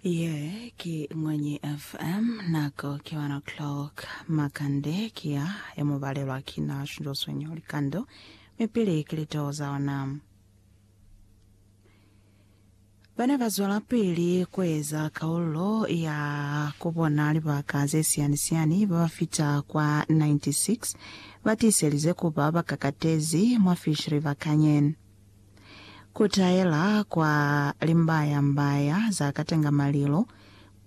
Ye ki Ngwenyi FM, nako ki 1 o'clock makande ki ya e mu balelwa ki na Shunjo Swenyo Likando, mi pili ki litoo za ona. Bana ba zwelapili ku eza kaulo ya ku bona libaka ze siyani-siyani ba ba fita kwa 96 ba tiiselize ku ba ba kakatezi mwa Fish River Canyon. Kutaela kwa limbaya-mbaya za katenga malilo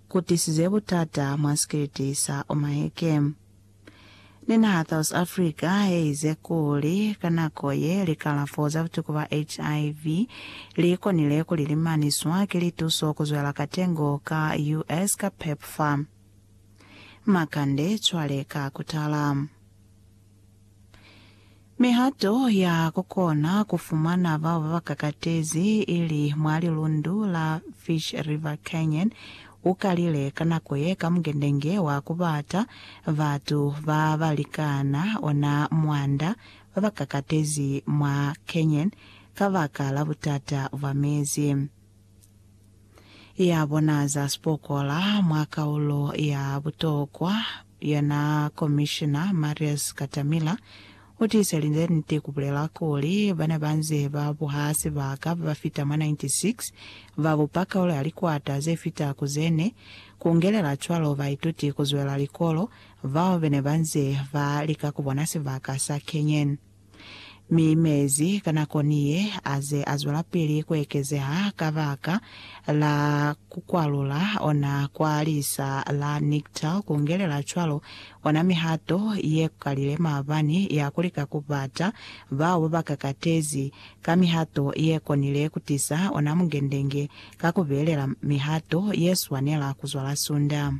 kutisize butata mwa sikiliti sa Omaheke. Ni naha South Africa yeize kuli ka nako ye likalafo za butuku ba HIV likonile kuli limaniswa ki lituso kuzwela katengo ka US ka Pepfar. Makande cwale ka kutala. Mihato ya ku kona ku fumana bao ba ba kakatezi ili mwa lilundu la Fish River Canyon u kalile ka nako ye ka mugendenge wa ku bata batu ba ba likana ona mwanda ba ba kakatezi mwa canyon kabaka la butata bwa mezi ya bona za sipokola mwa kaulo ya butokwa Yena Komishina Marius Katamila u tiisa linzwi la niti ku bulela kuli, bana ba nze ba buha sibaka ba ba fita mwa 96 ba bupa kaulo ya likwata ze fita ku ze ne, ku ngelela cwalo baituti ku zwela likolo bao be ne ba nze ba lika ku bona sibaka sa Kenyan. Mi mezi ka nako ni ye aze azwelapili kuekezeha kabaka la kukwalula ona kwa lisa la Niktal kungelela cwalo ona mihato yekukalile maabani ya kulika kubata bao babakakatezi ka mihato yekonile kutisa ona mungendenge ka kubelela mihato yeswanela kuzwala sunda.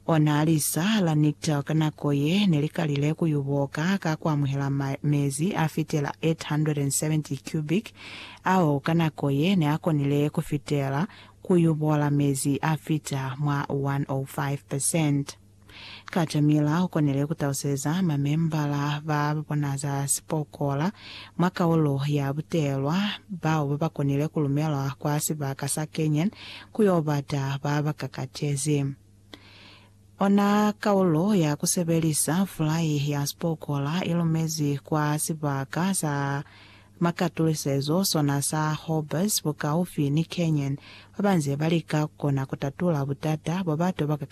O na li sa la Niktel ka nako ye ne li kalile ku y'u boka ka ku amuhela ma, mezi a fitela 870 cubic, ao ka nako ye ne a konile ku fitela ku y'u bola mezi a fita mwa 105 percent. Caterpillar u konile ku taluseza mamembala ba bona za sipokola Mwa kaulo ya butelwa, bao babakonile kulumelwa kwa sibaka sa Canaan ku yo bata ba ba kakatezi. Ona kaulo ya kusebelisa fulai ya sipokola ilumezi kwa sibaka sa makatulisezo sona sa Horbes bukaufi ni Canaan, babanze balika kukona kutatula butata bwa batu ba ba kakatezi.